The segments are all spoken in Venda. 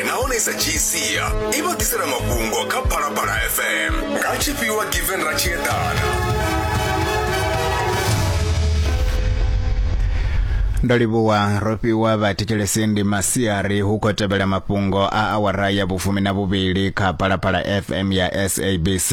nahone i sa dzhii sia i vha ḓisela mafhungo kha phalaphala fm nga tshifhiwa given ra tshi eḓana ndo livhuwa ro fhiwa vhathetshelesi ndi masiari hu khou tevhela mafhungo a awara ya vhufumi na vhuvhili kha phalaphala fm ya sabc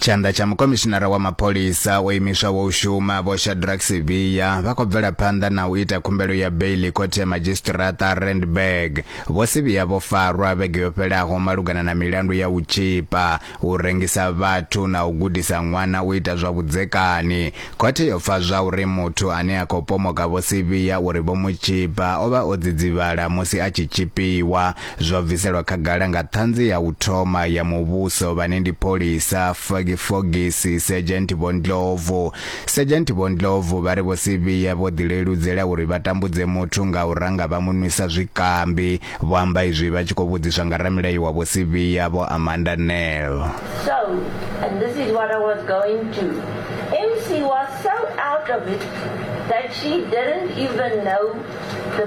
Tshanḓa tsha mukomishinara wa mapholisa o imiswaho u shuma Vho Shadrack Sibiya vha khou bvela phanḓa na u ita khumbelo ya beili khothe ya madzhisiṱiraṱa Randburg. Vho Sibiya vho farwa vhege yo fhelaho malugana na milandu ya u tzhipa, u rengisa vhathu na u gudisa ṅwana u ita zwa vhudzekani. Khothe yo pfa zwauri muthu ane a khou pomoka Vho Sibiya uri vho mu tzhipa o vha o dzidzivhala musi a tshi tzhipiwa. zwo bviselwa khagala nga ṱhanzi ya u thoma ya muvhuso vhane ndi pholisa Fagi Fogisi Sergeant Vho Ndlovu. Sergeant Vho Ndlovu vha ri vho Sivhiya vho ḓileludzela uri vha tambudze muthu nga u ranga vha mu nwisa zwikambi. Vho amba izwi vha tshi khou vhudziswa nga ramilayo wa vho Sivhiya Vho Amanda Nel. So, and this is what I was going to. MC was so out of it that she didn't even know the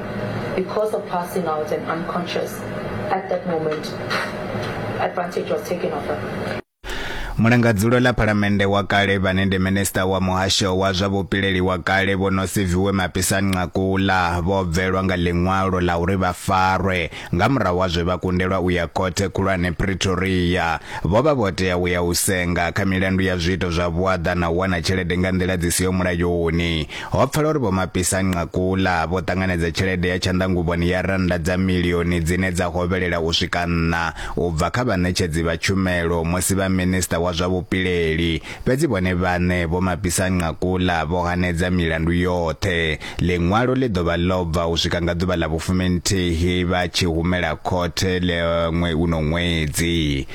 Mulangadzulo ḽa Phalamennde wa kale vhane ndi Minisṱa wa Muhasho wa zwa Vhupileli wa kale Vho Nosiviwe Mapisa-Nqakula vho bvelwa nga ḽiṅwalo ḽa uri vha farwe nga murahu ha zwe vha kundelwa u ya Khothe Khulwane Pretoria. Vho vha vho tea u ya u senga kha milandu ya zwiito zwa vhuaḓa na u wana tshelede nga nḓila dzi siho mulayoni. Ho pfala uri Vho Mapisa Nqakula vho ṱanganedza tshelede ya tshanḓanguvhoni ya rannda dza milioni dzine dza hovhelela u swika nṋa u bva kha vhaṋetshedzi vha tshumelo musi vha minisiṱa wa zwa vhupileli, fhedzi vhone vhaṋe Vho Mapisa Nqakula vho hanedza milandu yoṱhe. Ḽiṅwalo ḽi ḓo vha ḽo bva u swika nga ḓuvha ḽa vhufuminthihi vha tshi humela khothe ḽe ṅwe uno ṅwedzi.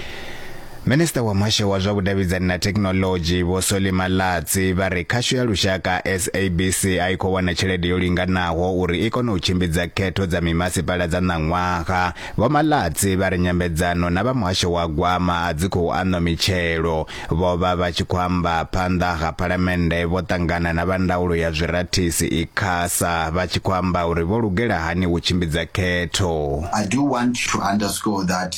Minisiṱa wa Muhasho wa zwa Vhudavhidzani na Thekhinoḽodzhi, Vho Solly Malatsi, vha ri khasho ya lushaka, SABC, a i khou wana tshelede yo linganaho uri i kone u tshimbidza khetho dza mimasipala dza ṋaṅwaha. Vho Malatsi vha ri nyambedzano na vha muhasho wa gwama a dzi khou aṋwa mitshelo. Vho vha vha tshi khou amba phanḓa ha Phalamennde vho ṱangana na vha ndaulo ya zwirathisi, Icasa, vha tshi khou amba uri vho lugela hani u tshimbidza khetho. I do want to underscore that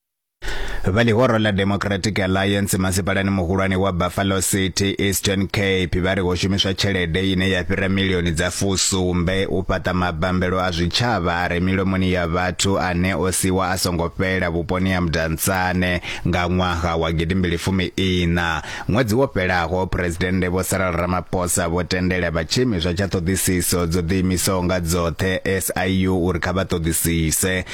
vha ḽihoro ḽa democratic alliance masipalani muhulwane wa buffalo city eastern cape vha ri ho shumiswa tshelede ine ya fhira milioni dza fusumbe u fhaṱa mabambelo a zwitshavha a re milomoni ya vhathu ane o siwa a songo fhela vhuponi ha mudantsane nga ṅwaha wa gidimbili fumi ina ṅwedzi wo fhelaho phuresidennde vho saral ramaphosa vho tendela vha tshiimiswa tsha ṱhoḓisiso dzo ḓiimisaho nga dzoṱhe siu uri kha vha ṱoḓisise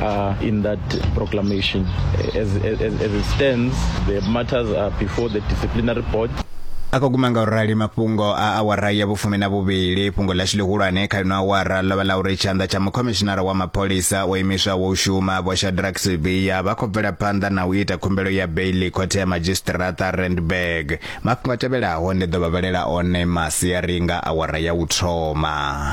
are in that proclamation. As, as, as it stands, the matters are before the disciplinary board. a khou guma nga u rali mafhungo a awara ya vhufumi na vhuvhili fhungo ḽashu ḽihulwane kha ino awara ḽo vha ḽa uri tshanḓa tsha mukhomishinara wa mapholisa wo imiswaho u shuma vho shadrak sibiya vha khou bvela phanḓa na u ita khumbelo ya beili khothe ya madzhisiṱiraṱa randburg mafhungo a tevhelaho ndi ḓo vha vhalela one masiari nga awara ya u thoma